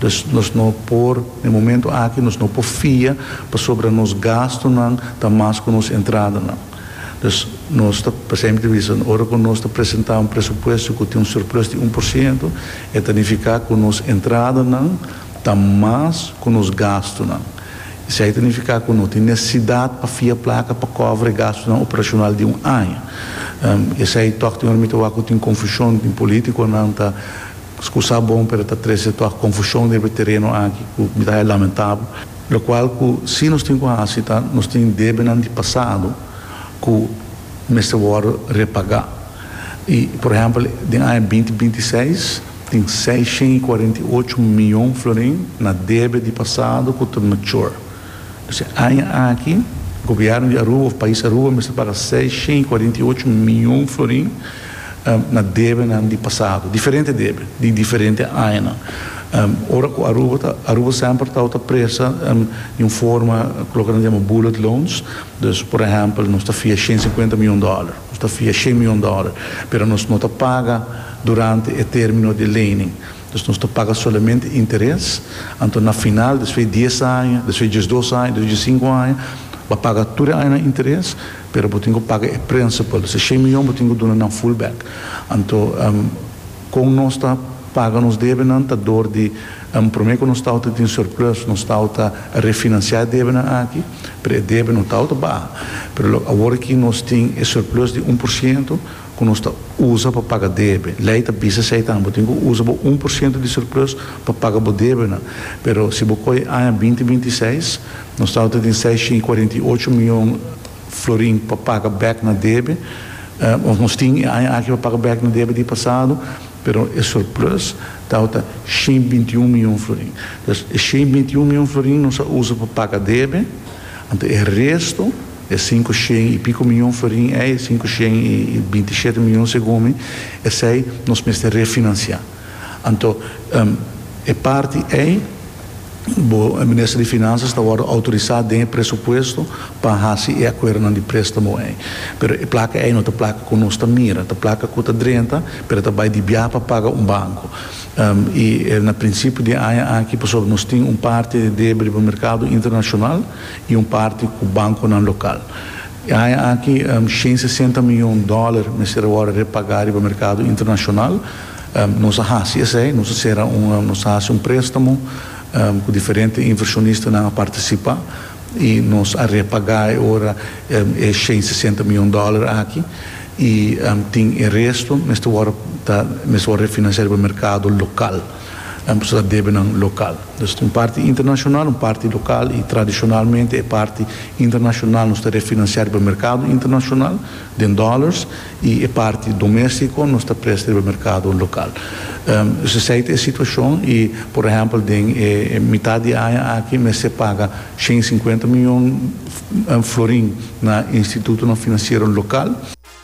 Dus nos no por, den momento aki nos no por fia pasobra nos gastunan ta mas ku nos entradanan. Dus nos ta, pa esempel ta bisa ora ku nos ta presentá un presupuesto ku tin un surplus di un por siento, e ta nifiká ku nos entradanan ta mas ku nos gastunan. Esei ta nifiká ku no tin nesesidat pa fia plaka pa kòbra e gastunan operashonal di un aña. Esei tòg tin ora mi ta wak ku tin konfushon, tin polítikonan ta. Scusa bon pero ta trece toa confusion riba e tereno aki cu mi ta haya lamentabo, locual cu si nos tin cu haci ta nos tin debenan di pasado cu mester wordo repaga y por ehempel den aña binti binti seis tin seiscientos y cuarenta y ocho miyon florin na debe di pasado cu ta mature. Dje aña aki, gobièrnu di Aruba òf pais Aruba mester paga seis shen i kuarenta i ocho mion florin na debenan di pasado, diferente debe di diferente añanan. Ora ku Aruba ta, Aruba semper tau ta presta di un forma ku loke nan ta yama bullet loans, dus por ehèmpel nos ta fia shen sinkuenta mion dòler, nos ta fia shen mion dòler, pero nos no ta paga durante e término di e lening. Dus nos ta paga solamente interes, anto na final, despues di dies aña, despues di diesdos aña, despues di diesinku aña, bo paga tur e añanan interes, pero bo tin ku paga e principal. Esei shen miyon bo tin ku duna nan full back. Anto, kon nos ta paga nos debenan ta dor di, promé ku nos ta outa tin surplus, nos ta outa refinansiá e debenan aki, pero e debe no ta outa baha. Pero lo awor aki nos tin e surplus di un por siento, ku nos ta usa pa paga debe. Lei ta bisa esei tambe, bo tin ku usa bo un por siento di surplus pa paga bo debenan. Pero si bo kohe aña binti binti seis, nos tabata tin seisciento cuarenta y ocho mion florin pa paga bek na debe, òf nos tin e aña aki pa paga bek na debe di pasado, pero e surplus tabata ciento veintiuno mion florin. Entonces, e ciento veintiuno mion florin nos a usa pa paga debe, anto e resto. E sinku shen i pico mion ferin ei, e sinku shen i binti shete mion segun mi, esei nos mester refinancia. Anto, e parti ei, bo, e Minister di Finanzas ta wordo autorisa den e presupuesto pa haci e acuerdonan di prestamo ei. Pero e placa ei no ta placa cu nos ta mira, ta placa cu ta drenta, pero ta bai di biaha pa paga un banco. I e na principio di aña aki, pasobra nos tin un parti di debe riba mercado internacional, i un parti ku bankonan lokal. E aña aki shen sesenta mion dòler mester a wòrdu repagá riba merkado internashonal. Nos a hasi esei, nos a sera un, nos a hasi un préstamo ku diferente invershonistanan a partisipá i nos a repagá e ora e shen sesenta mion dòler aki i tin e resto mester wòrdu ta mester wòrdu refinansiá riba merkado lokal. Nan por sa debenan lokal. Dus un parti internashonal, un parti lokal i tradishonalmente e parti internashonal nos ta refinansiá riba merkado internashonal den dòlars i e parti domèstiko nos ta presta riba merkado lokal. Dus esei ta e situashon i por ehèmpel den e mitat di aña aki mester paga shen i sinkuenta miyon florin na institutonan finansiero lokal.